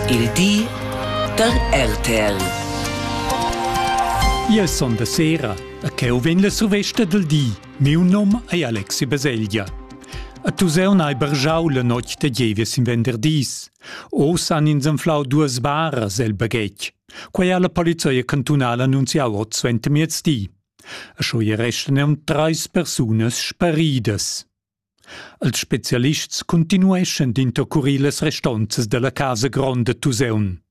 Il di da RTL. Ia son da sera, a cheu vegn la survesta del di. Miu nom ei Alexi Baselgia. A tu seu n'hai bergiau la notg de gievies in venderdis. Oz han ins anflau duas baras el baghetg. Quei ha la polizia cantunala annunziau oz suentermiezdi. A scho e restan aunc treis persunas sparidas. Els spezialists cuntinueschan d'intercurir las restonzas dalla casa gronda Tuseun.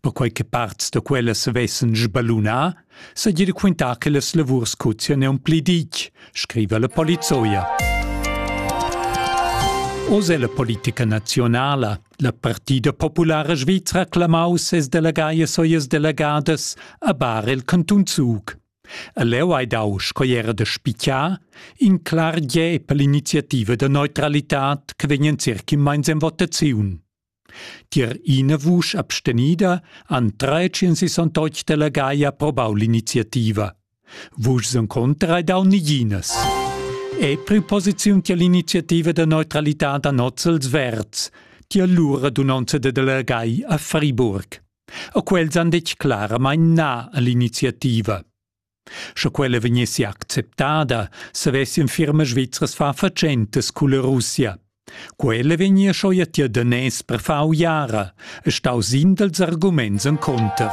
Perquei che parts da quellas vessen sballunà, seigi de quintar che las lavurs cozien aunc pli ditg, scriva la polizoia. Oz è la politica nazionala, la Partida Populara Svizra clamau ses delegaias e las delegadas a bar el cantun Zug. E leu hai dau, sco era da spicar, in clar gie per l'iniziativa da neutralitad che vegnan circa immeins en votaziun. Tier ina vusch abstenida han 368 delegai approbau l'iniziativa. Vuschs en contra hai dau niginas. E preposiziun tier l'iniziativa da neutralitad a Nozzels Verds, tier l'ura dunonza da delegai a Friburg. E quels han detg claramain na a l'iniziativa. Sche quella vegnessi acceptada, savessien firmas svizras far fatschentas culla Russia. Quella vegnia schoia tier danès per far uiara, e stau sin dels arguments en conter.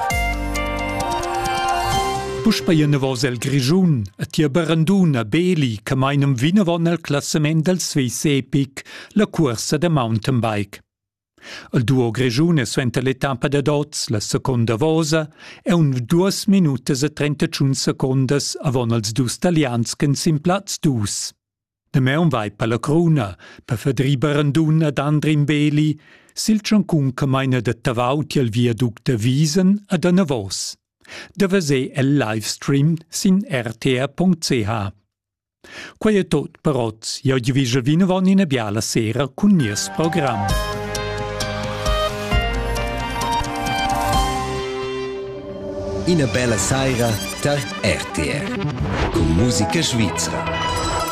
Puspei enavos el Grischun e tia Baranduna Beli che mainam vinavon al classament del Swiss Epic, la cuorsa da mountainbike. Il duo grischun è suenter l'etappa dad oz la seconda vosa e un duas minutas e trentacun secondas avon els dus talians ch'en sin plaz dus. Damaun vai per la cruna, per Fedri Barandun ed Andrin Beli, sil tschoncun che maina da Tavau tiel viaduct da Wiesen ad anavos. Da veser el live stream sin rtr.ch. Quei è tot per oz. Eu ti vi vinavon ina biala sera cun nies program. Ina bella saira tar RTR. Con musica svizra.